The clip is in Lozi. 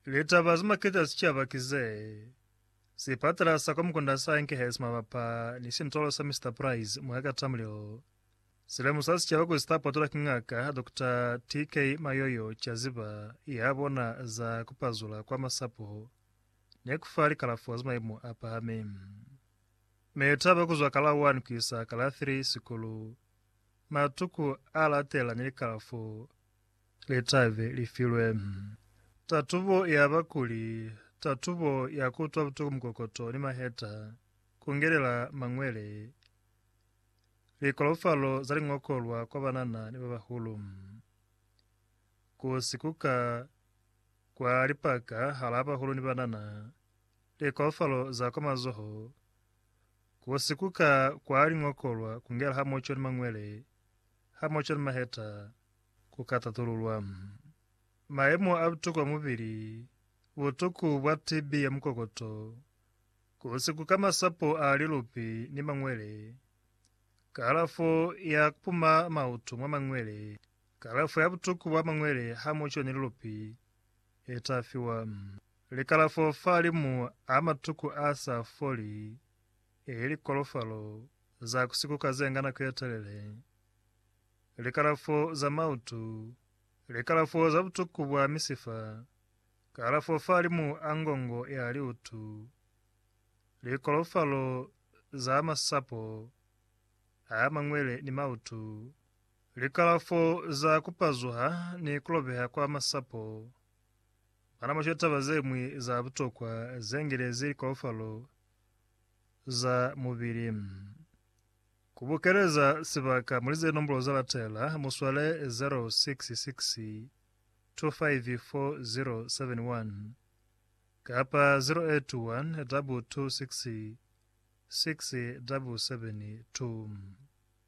Litaba ze maketa sicaba ki ze, Sipatala sa kwa Mukunda sa Enkehesi mabapa ni sintolo sa Mister Price mwa ka Tamrill si lemusa sicaba kuli sita patula ki Ngaka Dokota TK Mayoyo ca ziba ya bona za ku pazula kwa masapo ni ku fa likalafo za maimu a pahami. Mitaba ku zwa ka la 1 ku isa ka la 3 sikulu, matuku a latela ni likalafo litabe li filwe tatubo ya bakuli, tatubo ya kutwa butuku mukokoto ni maheta, kungelela mangwele, likolofalo za lingokolwa kwa banana ni babahulu, ku sikuka kwa lipaka hala bahulu ni banana, likolofalo za kwa mazoho, ku sikuka kwa lingokolwa kungela hamoco ni mangwele, Ha mu cwani maheta ku ka tatululwa. Mayemo a butukwa mubili, butuku bwa TB ya mukokoto, ku si kuka masapo a lilupi ni mañwele, kalafo ya ku puma mautu mwa mañwele, kalafo ya butuku bwa mañwele ha mu cwani lilupi, i ta fiwa. Likalafo fa limu a matuku a sa foli. Ili likolofalo za ku sikuka ze nga nako ye telele, likalafo za mautu, likalafo za butuku bwa misifa, kalafo fahalimu a ngongo ya liutu, likolofalo za masapo a mangwele ni mautu, likalafo za ku pazuha ni ku lobeha kwa masapo, manamasho taba ze ñwi za butokwa ze ngelezi likolofalo za mubili. Ku bukeleza sibaka muli ze nombolo za latela, mu swale 066254071 kapa 0812266772.